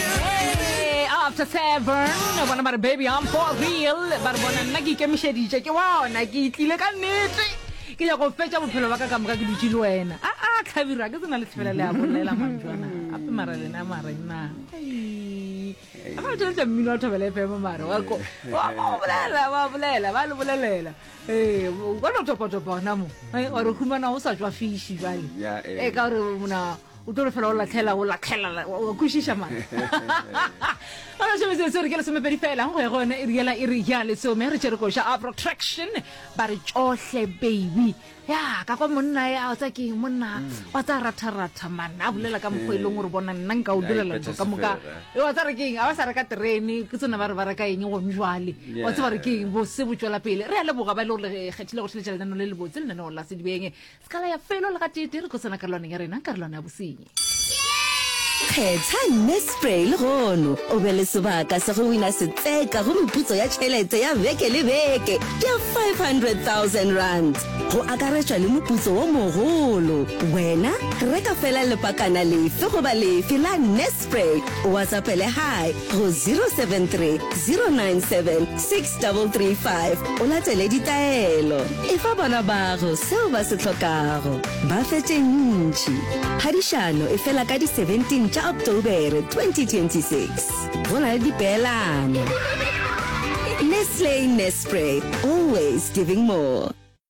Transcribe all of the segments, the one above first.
Hey, after seven bona ba re baby i'm for real ba re bona nna ke ikemišeditše ke bona ke tlile ka nnete ke ya go fetša bophelo ba ka ka moka ke dutše le wena a a tlhabiro a ke tsena le thibela le a bolela mantswana ape mara lena marenna ga o tšweletša mmino wa thobela fm mare wa ko wa ko bolela wa bolela ba le bolelela ee o ka no topatopa gona mo wa re humana o sa tswa fiši jale Yeah, eh. e ka gore mona o tlo fela o latlhela o latlhela o kwešiša mara ana šome se se re ke lesomepedi fela go ya go yone e riela e re ya lesome re tšere koša a protraction ba re tšohle baby ya ka kwa monna ya o tsa ke monna mm. wa tsa ratharatha man a bolela ka mokgwa e leng gore bona nna nka o direla ntho ka moka e wa tsa re keng a ba sa reka terene ke tsone ba re ba reka eng gone jwale wa tse ba re keng bose bo tswela pele re ya leboga ba e le gore kgethile go tlheletša lenano le le botse lenaneo la sedibeng Skala ya felo le gateetee re tlo tsena karolwaneng ya rena, karolwana ya bosenyi. Kgetha Nespray legono o be le sebaka sa go wina setseka go meputso ya tšhelete ya beke le beke ya R500,000 go akaretšwa le moputso wo mogolo. Wena reka fela lepakana lefe goba lefe la Nespray o watsapele hi go 073 097 335 o latele ditaelo. Efa bana bago seo ba se hlokago. Ba fe tše ntši. Phadišano e fela ka di 17 tša Ocktobere 2026. Go na le dipeelano. Nestle Nespray, always giving more.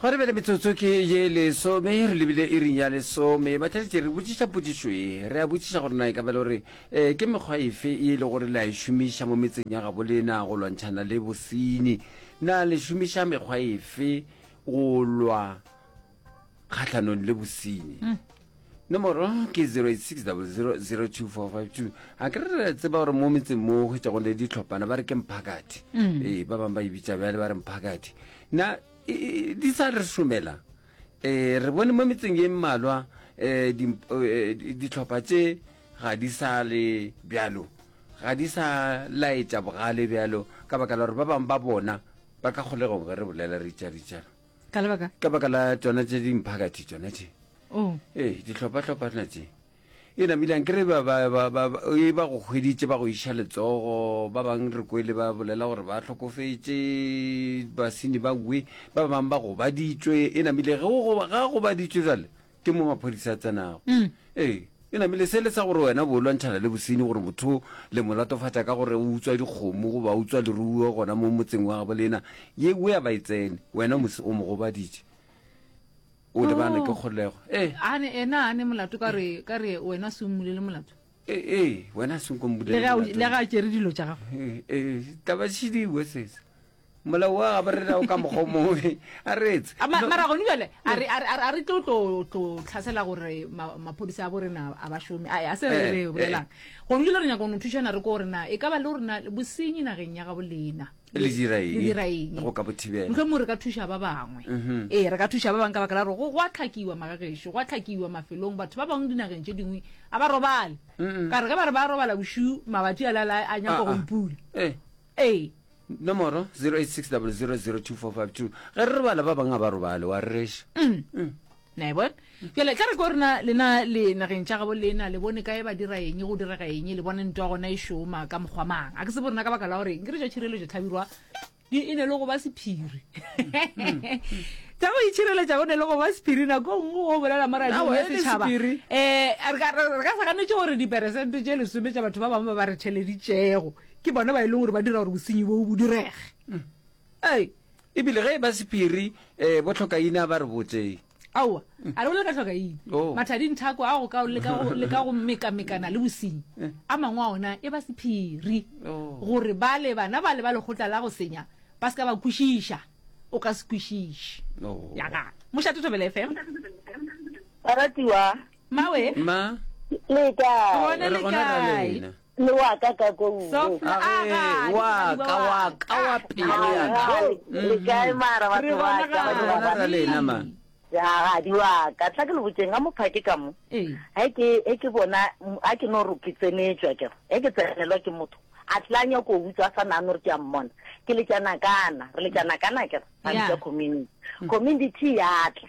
Gwa re bjale metsotso ke ye lesome, re lebile iring ya lesome. Ba tladitše re botšiša potšišo ye. Re a botšiša gore na e ka ba e le gore ke mekgwa efe ye e lego gore le a e šomiša mo metseng ya gabo lena go lwantšhana le bosenyi. Na le šomiša mekgwa efe go lwa kgahlanong le bosenyi? Nomoro ke 0860002522. A ke re tseba gore mo metseng mo hwetšago le ditlhophana ba re ke mphakathi. Ee, ba bangwe ba e bitša bjale ba re mphakathi. Na di sa re šomela um re bone mo metseng ye mmalwa um ditlhopha tše ga di sa le bjalo ga di sa laetša bogale bjalo ka baka la gore ba bangwe ba bona ba ka kgolegong ge re bolela ritšaritšana ka baka la tsona tše dimphakathi tsona tše oh. ee ditlhophatlhophana tše E namile anke re ba, ba, ba, ba, ba, e ba go hweditše ba go iša letsogo, ba bang re kwele ba bolela gore ba hlokofetše, basini ba ue, ba bang ba gobaditšwe. E namile ge o goba, ga gobaditšwe jale, ke mo maphodisa a tsenago. Mm. Ee, e namile se le sa gore wena bo lwantšhana le bosini gore motho le mo latofatša ka gore o utswa dikgomo goba o utswa leruo gona mo motseng wa gabo lena, ye ue a ba e tsene, wena mos, o mo gobaditše. O lebane ke kgolego. Eh. Ane ena ane molato ka re ka re wena se mmulele molato. Eh eh wena se nko mbulele. Le ga le ga tšere dilo tša gago. Eh eh taba tšhidi we sesa. Mola wa ga re ra o ka mogo mo a retse. Mara gone jale a re a re tlo tlo tlo tlhasela gore maphodisa a bo rena a ba shome. A se re re bolelang. Gone jale re nyaka go no thušana re ko rena e ka ba le rena bosenyi nageng ya ga bolena. le dira eng? le dira eng go ka bo thibela mohlomong re ka thuša ba bangwe Mhm. ee re ka thuša ba bangwe ka baka la gore go go a tlhakiwa magagešo go a tlhakiwa mafelong batho ba bangwe dinageng tše dingwe a ba robale Mm-mm. ka re ge ba re ba robala bošu mabatši a lala a nyaka Ah, go ah. ipula Eh, ee nomoro 0860000242 ge re robala ba bangwe a ba robale wa rereša Mm. na e bona jale tla re ko rena lena le nageng tša gabo lena le bone kae ba dira eng go direga eng le bone nto ya gona e šoma ka mokgwa mang a ke se bo rena ka baka la gore ke re jo tšhireletšo tlhabirwa e ne le go ba sephiri tsa go itšhireletša o ne le go ba sephiri nako nngwe o bolela moraong ya setšhaba um re ka sa ganetse gore diperesente tše lesome tša batho ba bangwe ba ba re theleditšego ke bone ba e leng gore ba dira gore bosenyi bo bo direge mm. Ai, e bile ge e ba sephiri, e, bo tlhokaina ba re botse. Aowa, a re bolela ka tlhokaina. Oh. Mathadi nthako a go ka le ka go, le ka go mekamekana le bosenyi, eh. a mangwe a ona e ba sephiri, oh. gore bale bana bale ba lekgotla la go senya ba se ka ba kwešiša, o ka se kwešiše. Oh. Ya ga. Mošate Thobela FM. Baratiwa. Mawe. Ma. Le kae? Gona le kae? le wa ka ka ko nngwe Softly, a Age, ga, le wa mosadi wa ka, wa wa ka, ka. wa pelo ya ka. Hai, le Mhm. kae mara Re batho ba bona ka ga. Re bona ra lena, man. Ee. jagadi wa ka tla ke le botseng ga mophake ka mo Ee. ge ke ge ke bona m- ga ke no re ke tsenetswa ke re ge ke tsenelwa ke motho a tla nyako o utswa a sa nagane gore ke a mmona ke letšana kana re letšana kana ke re ga Yeah. bitsa community community ya tla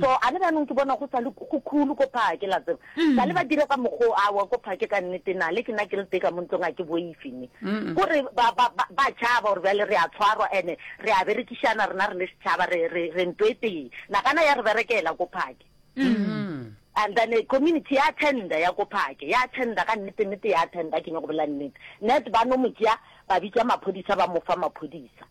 so a le bjanong ke bona go sa le go khulu ko phake la tseba sa le ba dire ka mokgoo awa ko phake ka nnete na le ke nna ke le teka mo ntlong a ke boife ne gore ba ba- ba- ba tšhaba gore bjale re a tshwarwa ene re a berekišana rena re le setšhaba re re- re nto e tee nagana ya re berekela ko phake and then eh, community ya tender ya ko phake ya tender ka nnete nnete ya tender ke nyako bolela nnete net ba no mo tšea ba bitša maphodisa ba mo fa maphodisa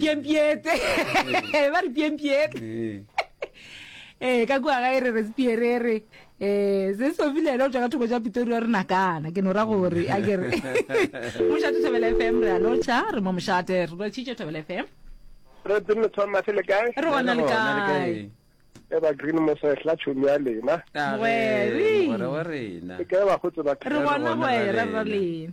piempiete ba re piempiete ee ka kua ga e re respierere um se sobilele o tswa ka thoko ja pitori wa rena kana ke no ra gore a kere mošate thobela f m re a lotšha re mo mošate re lotšhitše thobela f m re tsene thomas le kae re gona le kae eba green mosehla tšhomi ya lena re gona gore ra lena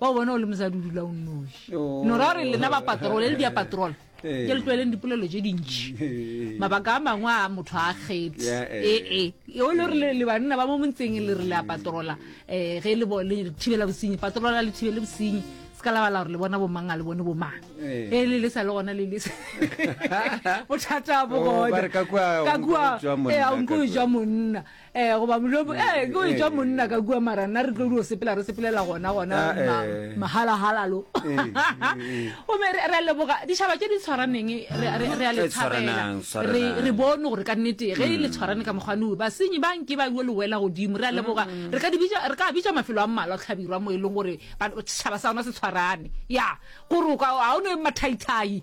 wa o bona o le mosadi o dula o nnoši oh. no ra gore lena ba patrole le dia patrole eh. ke le tlwaeleng dipolelo tse dintši eh. mabaka a mangwe a motho a kgetsi ee eh. o le gore le banna ba mo montseng le re le a patrola um ge le thibela bosenyi patrola le thibele bosenyi se ka labala gore le bona bomang a le bone bomang e le le sa le gona le le bothata bo oh, gona ka kua e a nko jwa monna eh goba molomo mm, eh ke o etšwa eh. monna ka kua mara nna re tlo dio sepela re sepelela gona gona ah, eh. mahalahalalo eh, gomme re a leboga ditšhaba tše di tshwaraneng re a le tshwarela re bone gore ka nnete ge le mm. tshwarane ka mokgwane o basenyi ba nke ba yo lewela godimo re a leboga mm. re ka bitša mafelo a mmalwa tlhabirwa mo e leng gore setšhaba sa rona se tshwarane ya gore o ka a o ne mathaithai